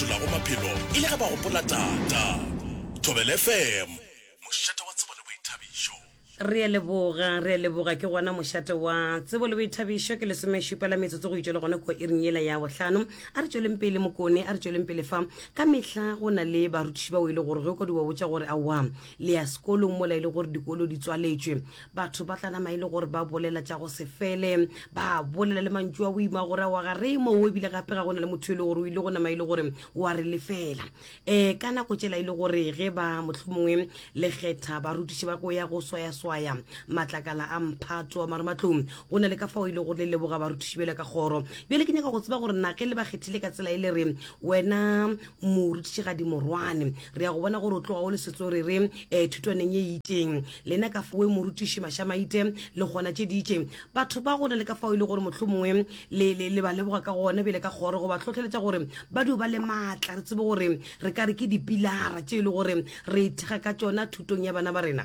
fetolago maphelo e le ge ba gopola Tata. Thobela FM, mošate wa tsebo le boithabišo. Re a leboga, re a leboga. Ke gona mošate wa tsebo le boithabišo. Ke lesomešupa la metsotso go itšwa le gone kua iring yela ya bohlano. A re tšweleng pele mokone, a re tšweleng pele fa. Ka mehla go na le barutiši bao e le gore ge o ka di ba botša gore aowa le ya sekolong mola e le gore dikolo di tswaletšwe, batho ba tla nama e le gore ba bolela tša go se fele ba bolela le mantšu a boima gore a wa ga re mo o ebile gape ga go na le motho e le gore o ile go nama e le gore wa re lefela um ka nako tšela e le gore ge ba motlho mongwe lekgetha barutiši ba go ya go swayaswaya matlakala a mphato a maromatlong go na le ka fao e le gore le leboga barutiši bjale ka kgoro bjale ke nyaka go tseba gore nage le ba kgethile ka tsela e le re wena morutiši ga di morwane re ya go bona gore o tloga o le setso re re um eh, thutwaneng ye itšeng lena ka foe morutiši mašamaite le gona tše di itšeng batho ba gona le ka fao e le gore motlho mongwe le ba leboga ka gona bjele ka kgoro go ba tlhotlheletša gore ba dio ba le maatla re tsebe gore re ka re ke dipilara tše e le gore re ithega ka tšona thutong ya bana ba rena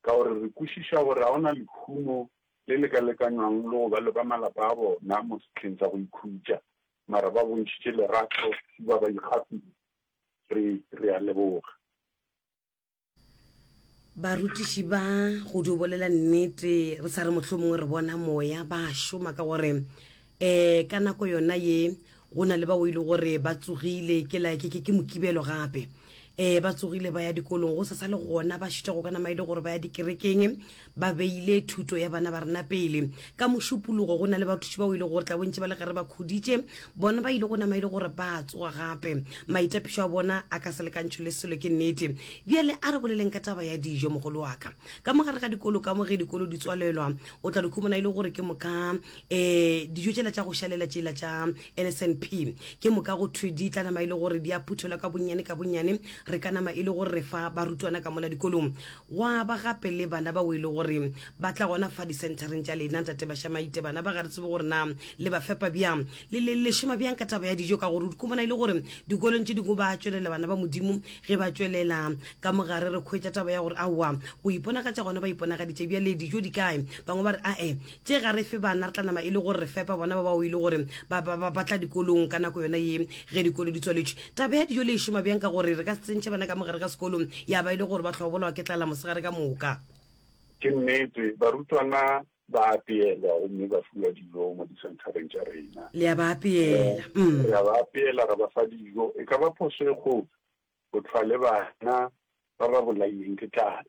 Ka gore re kwešiša gore ga go na lehumo le le ka lekanywang le go ba le ba malapa a bona mo sehleng sa go ikhutša, mara ba bontšhitše lerato e ba ba ikgafile. Re, re a leboga. Barutiši ba, go dio bolela nnete, re sa re mohlomongwe re bona moya, ba a šoma ka gore Ee, ka nako yona ye, go na le bao e le gore ba tsogile, ke la ke ke ke Mokibelo gape. Ee, ba tsogile ba ya dikolong, go sa sa le gona ba šita go ka nama e le gore ba ya dikerekeng, ba beile thuto ya bana ba rena pele. Ka Mošupologo go na le bathuši bao e le gore tla bontši ba le ge re ba khuditše, bona ba ile go nama e le gore ba tsoga gape. Maitapišo a bona a ka se lekantšhwe le selo, ke nnete. Bjale a re boleleng ka taba ya dijo, mogolo wa ka. Ka mo gare ga dikolo, ka mo ge dikolo di tswalelwa, o tla di khumana e le gore ke moka um dijo tšela tša go šalela tšela tša nsnp ke moka go thwe di tla nama e le gore di a phuthelwa ka bonnyane ka bonnyane re ka nama e le gore re fa barutwana ka mola dikolong gwa ba gape le bana bao e le gore ba tla gona fa dicentereng tša lena ntate bašamaite bana ba ga re tsebe gore na le ba fepa bjang le le le šoma bjang ka taba ya dijo ka gore ko bona e le gore dikolong tše dingwe ba tšwelela bana ba modimo ge ba tšwelela ka mogare re kgwetsa taba ya gore aowa go iponagatša gona ba iponagaditše bjale dijo di kae bangwe ba re ae Tše ga re fe bana, re tla nama e le gore re fepa bona ba bao e le gore ba, ba, ba, ba tla dikolong ka nako yona ye ge dikolo di tswaletšwe. Taba ya dijo le e šoma bjang ka gore re ka se tsentšhe bana ka mogare ga sekolo ya ba e le gore ba hlobolawa ke tlala mosegare ka moka? Ke nnete, barutwana ba apeelwa gomme ba fiwa dijo mo disenthareng tša rena. Le a ba apeela? Um. Re a ba apeela, ra ba fa dijo. E ka ba phošo e kgolo go hlwa le bana ba ba bolailweng ke tlala.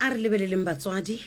a re lebeleleng batswadi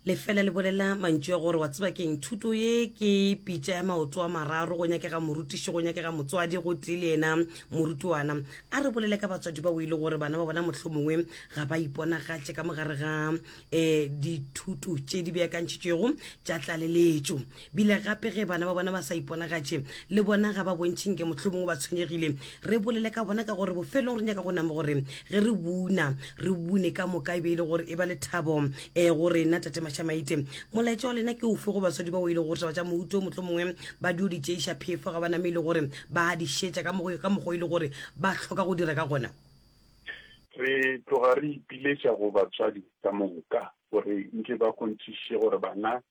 lefela le bolela mantšu ya gore wa tseba keng thuto ye ke pitša ya maoto a mararo go nyakega morutiši go nyakega motswadi go tee le yena morutwana a re bolele ka batswadi bao e le gore bana ba bona mohlomongwe ga ba iponagatše ka mogare ga eh dithuto tše di beakantšhitšwego tša tlaleletšo bile gape ge bana ba bona ba sa iponagatše le bona ga ba bontšheng ke mohlomongwe ba tshwenyegile re bolele ka bona ka gore bofelong re nyaka go name gore ge re buna re bune ka moka e be e le gore e ba le thabo um go rena tate mašamaite molaetša wa lena ke ofe go baswadi bao e le gore taba tša mouto mohlomongwe ba dio di tšeiša phefo ga ba name e le gore ba di šetša ka mokgwa e le gore ba hloka go dira ka gona Re tloga re ipiletša go batswadi ka moka gore nke ba kgonthiše gore bana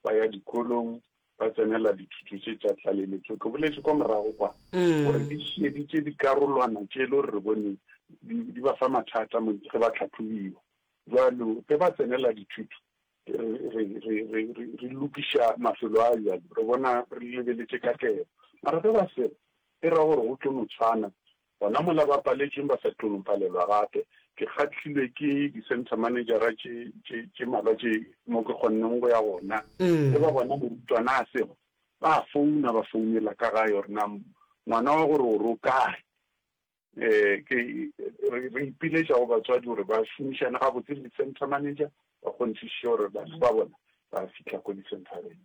ba ya dikolong, ba tsenela dithuto tše tša tlaleletšo. Ke boletše kwa morago kwa gore di šieditše dikarolwana tše e le gore re bone di ba fa mathata ge ba tlhahlobiwa. Bjalo ge ba tsenela dithuto, re lokiša mafelo a bjalo, re bona re lebeletše katlego. Mara ge ba seba, e ra gore go tlo no tshwana Gona mola ba paletšeng ba sa tlo no palelwa gape. Ke kgahlilwe ke di-centre manejara tše, tše, tše mmalwa tše mo ke kgonneng go ya gona. Ge ba bona morutwana a sego, ba a founa, ba founela ka gae gore na ngwana wa go roro o kae. Ke, re, re ipiletša go batswadi gore ba šomišane gabotse le di-centre manager, ba kgonthišiše gore bana ba bona ba fihla ko di-centre-reng.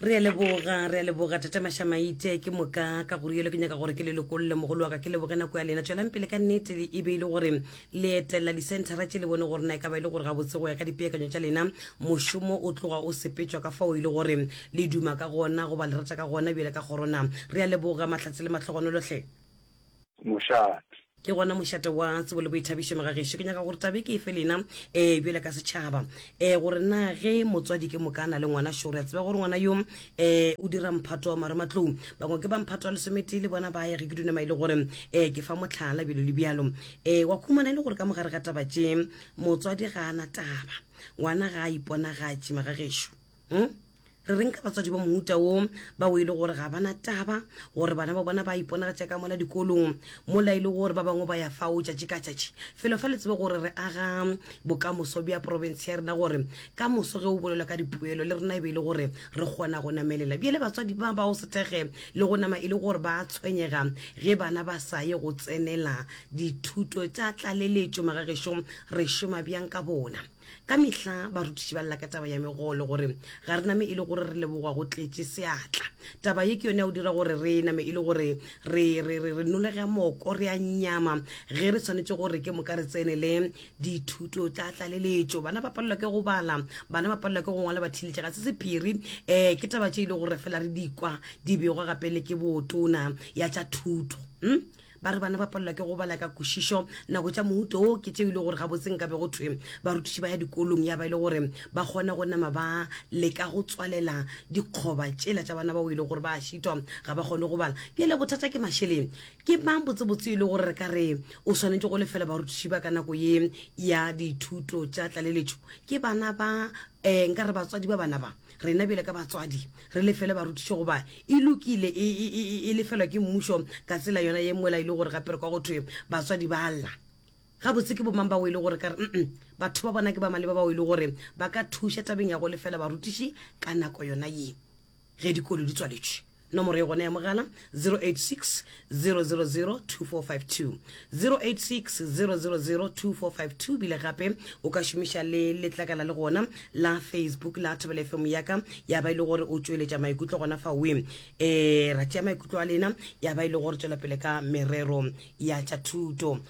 re a leboga re a leboga tata mašamaite ke moka ka gore yelo ke nyaka gore ke le lokolole mogolo wa ka ke leboge nako ya lena tswelang pele ka nnete e be e le gore le etelela disentara tše le bone gore na e ka ba e le gore gabotse go ya ka dipeakanyo tša lena mošomo o tloga o sepetšwa ka fao e le gore le duma ka gona goba le rata ka gona bjale ka kgorona re a leboga mahlatse le mahlogonolotlhe mošate. Ke gona mošate wa tsebo le boithabišo megagešo. Ke nyaka gore tabe ke efe lena ee bjale ka setšhaba ee gore na ge motswadi ke moka a na le ngwana šo re a tseba gore ngwana yo ee o dira mphato wa marematlou bangwe ke ba mphato wa lesometee le bona ba ya ge ke dunama e le gore ee ke fa mohlala bjalo le bjalo ee wa khumana e le gore ka mogare ga taba tše motswadi ga a na taba ngwana ga a iponagatše megagešo hmm? re reng ka batswadi ba mohuta wo bao e le gore ga bana taba gore bana ba bona ba iponagatša ka mona dikolong mola e le gore ba bangwe ba ya fao tšatši ka tšatši felo fa le tsebe gore re aga bokamoso bja province ya rena gore ka moso ge o bolelwa ka dipoelo le rena e be e le gore re kgona go namelela bjale batswadi ba ba o sethege le go nama e le gore ba tshwenyega ge bana ba sa ye go tsenela dithuto tša tlaleletšo magagešong re šoma bjang ka bona Ka mehla barutiši ba lla ka taba ya megolo gore ga re name e le gore re lebogwa go tletše seatla. Taba ye ke yone ya go dira gore re name e le gore re, re, re, re nolega moko, re a nyama ge re swanetše gore ke moka re tsene le dithuto tša tlaleletšo. Bana ba palelwa ke go bala, bana ba palelwa ke go ngwala, ba thiletše ga se sephiri. Um ke taba tše e le gore fela re di kwa di begwa gape le ke botona ya tša thuto. Um. Ba re bana ba palelwa ke go bala ka kwešišo. Nako tša mohuto wo ke tšeo e le gore gabotse nka be go thwe barutiši ba ya dikolong ya ba e le gore ba kgona go nama ba leka go tswalela dikgoba tšela tša bana bao e le gore ba a šitwa ga ba kgone go bala. Bjale bothata ke mašeleng. Ke mang botsebotse e le gore re ka re o swanetše go lefela barutiši ba ka nako ye ya dithuto tša tlaleletšo? Ke bana ba um nka re batswadi ba bana ba. Rena bjale ka batswadi re lefele barutiši goba e lokile e, e, e, e lefelwa ke mmušo ka tsela yona ye mola e le gore gape re kwa go thwe batswadi ba lla. Gabotse ke bomang bao e le gore ka re mm batho ba bona ke ba maleba bao e le gore ba ka thuša tabeng ya go lefela barutiši ka nako yona ye ge dikolo di tswaletšwe? Nomoro e gona ya mogala, 086 000 2452, 086 000 2452, bile gape o ka šomiša le letlakala le gona la Facebook la Thobela FM ya ka, ya ba e le gore o tšweletša maikutlo gona fa we. E, ra tšea maikutlo a lena, ya ba e le gore tšwelapele ka merero ya tša thuto.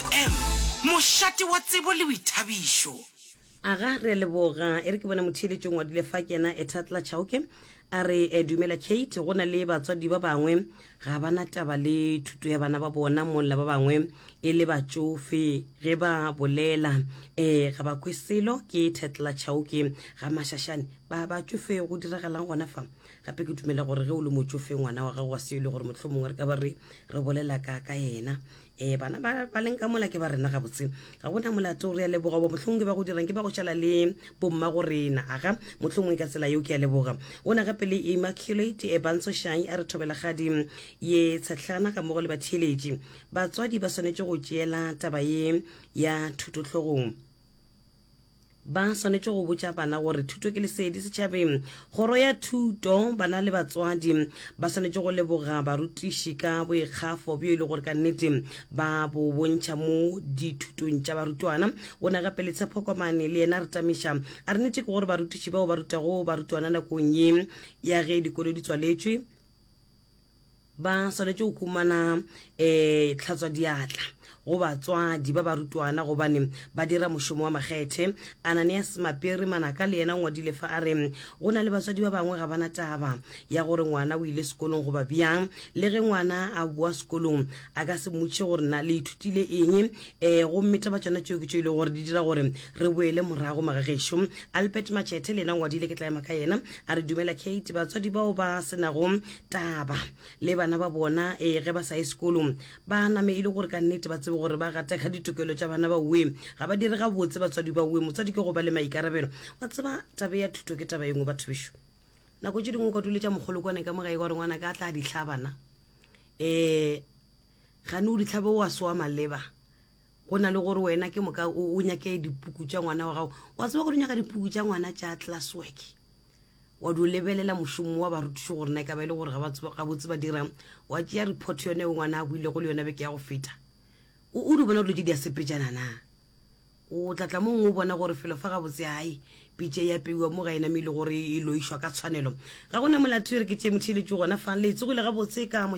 M, Mošate wa tsebo le boithabišo. Aga, Re a leboga. E re ke bona motheeletšong wa dule fa ke yena Ethatla Chauke. A re, eh, Dumela Kate, go na le batswadi ba bangwe ga ba na taba le thuto ya bana ba bona molla ba bangwe e le batšofe ge ba bolela eh ga ba kwe selo. Ke Ethatla Chauke. Ga Mashashane ba batšofe go diragalang gona fa? Gape ke dumela gore ge o le motšofe ngwana wa gago wa se e le gore mohlomongwe re ka ba re re bolela ka ka yena ee bana ba leng ka mola ke ba rena gabotse ga gona molato re a leboga bo mohlongwe ba go dirang ke ba go šala le bomma go rena aga mohlongwe ka tsela yeo ke a leboga o ne gape le immaculate e bantsho shang a re thobela gadi ye tshetlana ka mogo le batheeletši batswadi ba swanetše go tšeela taba ye ya thutohlogong Ba swanetše go botša bana gore thuto ke lesedi setšhabeng. Kgoro ya Thuto, bana le batswadi ba swanetše go leboga barutiši ka boikgafo bjo e le gore ka nnete ba bo bontšha mo dithutong tša barutwana. O ne gape le Tshepo Komane le yena a re tamiša a re nnete ke gore barutiši bao ba rutago barutwana nakong ye ya ge dikolo di tswaletšwe, Ba swanetše go humana um eh, tlhatswadiatla go batswadi ba barutwana gobane ba dira mošomo wa makgethe. Ananias Mapiri Manaka le yena o ngwadile fa a re go na le batswadi ba bangwe ga bana taba ya gore ngwana o ile sekolong goba bjang. Le ge ngwana a boa sekolong a ka se mmotšiše gore na le ithutile eng. Um eh, gomme taba tšona tšeo ke tšo e le gore di dira gore re boele morago magagešo. Albert Matšhethe le yena o ngwadile, ke tla ema ka yena, a re dumela Kate, batswadi bao ba se nago taba le bana ba bona e ge ba sa ye sekolong ba name e le gore ka nnete ba tsebe gore ba gateka ditokelo tša bana ba uwe ga ba dire gabotse batswadi ba uwe motswadi ke go ba le maikarabelo wa tseba tabe ya thuto ke taba engwe batho bešo nako tše dingwe ka dule tša mogolo kwane ka mogae ka gore ngwana ka a tla ditlhabana um gane o ditlhabe o a soa maleba go na le gore wena ke moka o o nyake dipuku tša ngwana wa gago wa tseba gore o nyaka dipuku tša ngwana tša class work wa di o lebelela mošomo wa barutišo gore na e ka ba e le gore ga botse ba dirang wa tšea report yone o ngwana a buile go le yone beke ya go feta o di bona dilo tse di a sepejana na o tlatla mongwe o bona gore felo fa ga botse gae pitše ya peiwa mo ga ena me e le gore e loišwa ka tshwanelo ga gona molato e re ke tšee motšheletso gona fa le tsegole ga botse ka